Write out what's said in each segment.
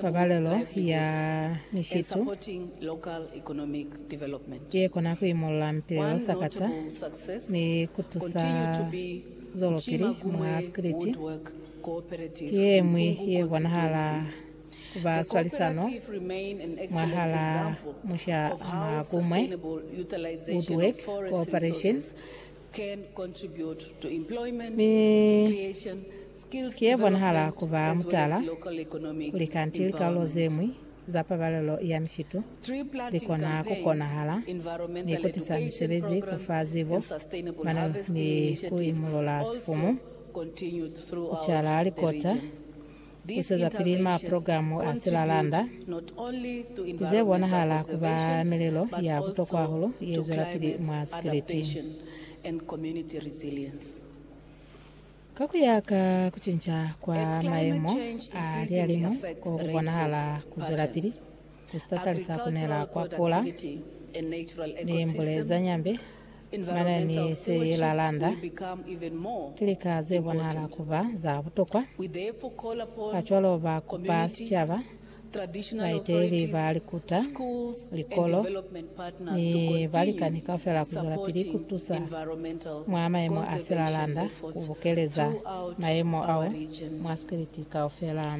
Pabalelo ya mishitu ye kona ku imolola mipilelo sakata ni ku tusa zwelopili mwa sikiliti ki ye ñwi ye bonahala ku ba swalisano mwahalaa musha mwa ku mwe, Woodwork Cooperation. Mi ki ye bonahala ku ba mutala kuli kanti likalolo ze ñwi za pabalelo ya mishitu li kona ku konahala ni ku tisa misebezi, ku fa zibo, mano ni ku imulula sifumu, ku cala likota, Kuswezapili mapulogalamu a silalanda ze bonahala ku ba milelo ya butokwa hahulu ye zwelapili mwa sikiliti. Ka ku ya ka ku cinca kwa mayemo a lihalimu ko ku bonahala ku zwelapili, Sitatali sa ku nela kwa pula ni mbule za nyambe mane ni se ye la landa ki lika ze bonahala ku ba za butokwa. Kacwalo ba kupa sicaba, baeteleli ba likuta, likolo, ni balikani kaufela ku zwelapili ku tusa mwa mayemo a silalanda ku bukeleza mayemo ao mwa sikiliti kaufela.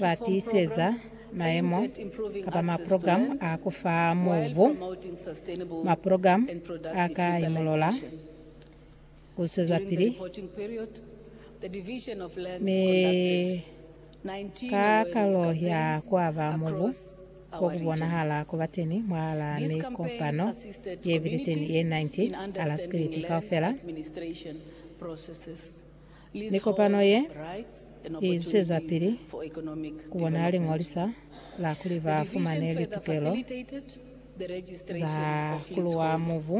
Ba tiiseza mayemo kapa maprogramu a ku fa mubu maprogramu a ka imolola ku zwezapili mi ka kalo ya ku aba mubu ko ku bonahala ku ba teni mwahala mikopano ye bili teni ye 19 alaskiliti kaufela. Mi kopano ye i zwezapili ku bona liñolisa la kuli ba fumane litokelo za ku luwa mubu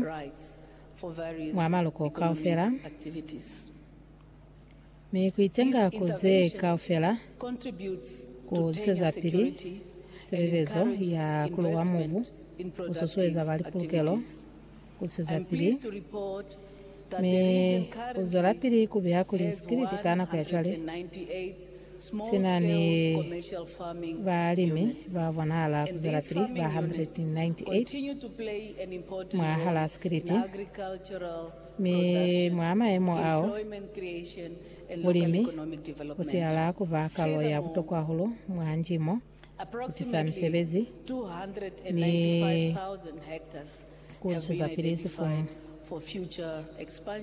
mwa maluko kaufela mi ku itenga ku ze kaufela ku zwezapili silelezo ya ku luwa mubu ku susueza ba lipulukelo ku sizapili, mi u zwelapili ku beha kuli sikiliti ka nako ya cwale si na ni balimi ba bonahala ku zwelapili ba 198 mwahal'a sikiliti, mi mwa mayemo ao, bulimi bu sihala ku ba kalo ya butokwa hahulu mwa njimo. kusisa misebezi ni kulusezapili sifumu,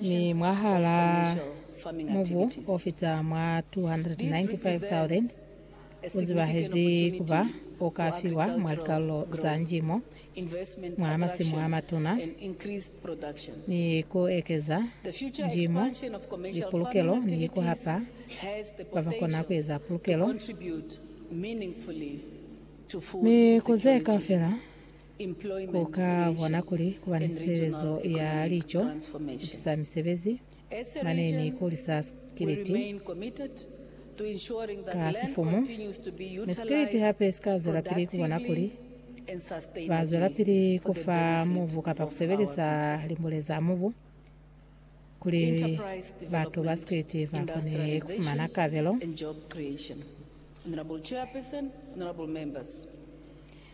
mi mwahalaa mubu ofita mwa 295,000 uzibahezi kuba okafiwa mwa likalulo za nji mo. mwa masimu a matuna ni ku ekeza ndimo, lipulukelo ni ku hapa ba ba kona ku eza pulukelo, mi ku ze kaufela ku ka bona kuli ku ba ni siselezo ya lico, ku tusa misebezi, Mane ni kolisa sikiliti ka sifumu, mi sikiliti hape si ka zwelapili ku bona kuli ba zwelapili ku fa mubu kapa ku sebelisa limbule za mubu kuli batu ba sikiliti ba kone ku fumana kabelo.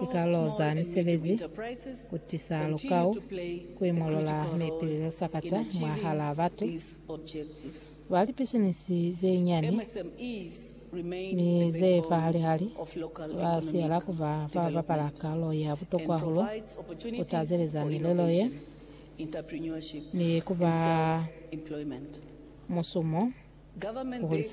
Likarolo za misebezi, Ku tisa lukau, ku imolola mipili le sakata mwahalaa batu ba lipisinisi ze nyani ni ze fahalihali ba siyala ku ba ba bapala karolo ya butokwa hahulu ku tazeleza milelo ye ni ku ba musumo ku hulisa